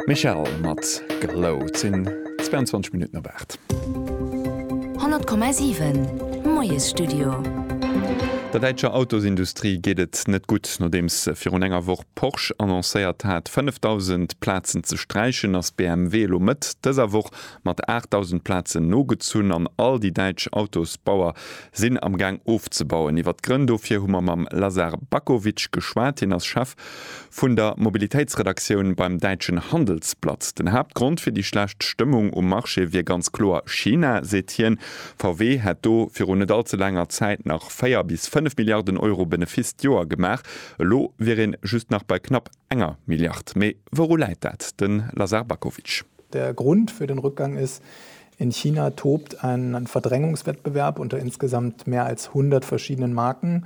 Michelle mat Glow. Et sinn 22 Minutten op 8. 100,7 Moiesstudio. Der däitscher Autosindustrie geet et net gutt. Nodeems virun enger Woch Porsche annoncéiert hat, 5.000 Plazen ze sträichen, ass BMW elo Mëtt dëser Woch mat 8.000 Plazen nogezunn an all déi däitsch Autosbauer sinn am Gaang ofzebauen. Iwwer d'Grënn dofir hu mer mam Lazar Bakovic geschwat. Hien ass Chef Vun der Mobilitéitsredaktioun beim däitschen Handelsblatt, Den Haaptgrond fir déi schlecht Stëmmung um Marché wier ganz kloer China, seet hien. VW hätt do viru net all ze laanger Zäit nach 4 bis 5 Milliarden Euro Benefiss d'Joer gemaach. Elo wier een just nach bei knapp enger Milliard. Mee wouru läit dat? De Lazar Bakovic. Der Grund für den Rückgang ist, In China tobt ein Verdrängungswettbewerb unter insgesamt mehr als 100 verschiedenen Marken.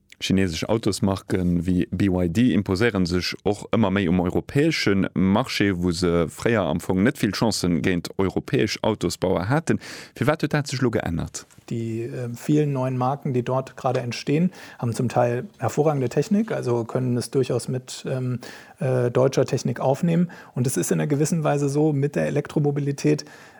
Chinesesch Autosmarke wéi BYD imposéiere sech och ëmmer méi um europäesche Marché, wou se fréier am Fong net vill Chance géint europäesch Autosbauer haten. Firwat huet dat sech elo geännert? Die vielen neuen Marken, die dort gerade entstehen, haben zum Teil hervorragende Technik, also können es durchaus mit deutscher Technik aufnehmen. Und es ist in einer gewissen Weise so mit der Elektromobilität,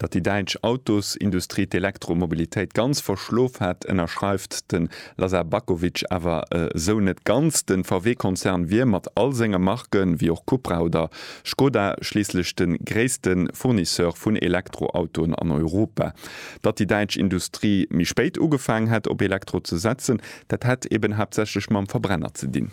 Datt déi däitsch Autosindustrie d'Elektromobilitéit ganz verschlof hätt, ënnerschreift de Lazar Bakovic awer esou net ganz. De VW-Konzern wier mat all senge Marke wéi och Cupra oder Škoda schliisslech de gréisste Fournisseur vun Elektroautoen an Europa. Datt déi däitsch Industrie méi spéit ugefaangen hätt op Elektro ze setzen, dat hätt eben haaptsächlech mam Verbrenner ze dinn.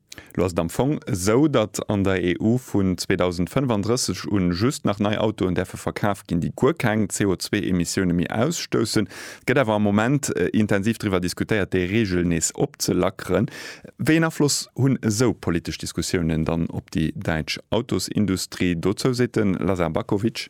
Lo ass et am Fong esou, datt an der EU vun 2035 un just nach nei Autoen däerfe verkaf ginn, déi guer keng CO2-Emissioune méi ausstoussen. Et gëtt awer am Moment intensiv driwwer diskutéiert, déi Reegel nees opzelackeren. Wéi een Afloss hunn esou politesch Diskussiounen dann op déi däitsch Autosindustrie? Dozou seet de Lazar Bakovic.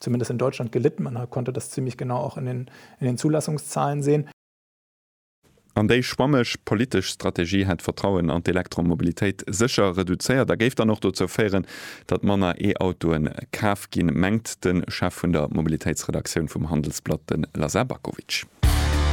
Zumindest in Deutschland gelitt. Man konnte das ziemlich genau auch in den, in den Zulassungszahlen sehen. An déi schwammeg politesch Strategie hätt d'Vertrauen an d'Elektromobilitéit sécher reduzéiert a géif dann och dozou féieren, datt manner E-Autoe kaf ginn, mengt de Chef vun der Mobilitéitsredaktioun vum Handelsblatt, de Lazar Bakovic.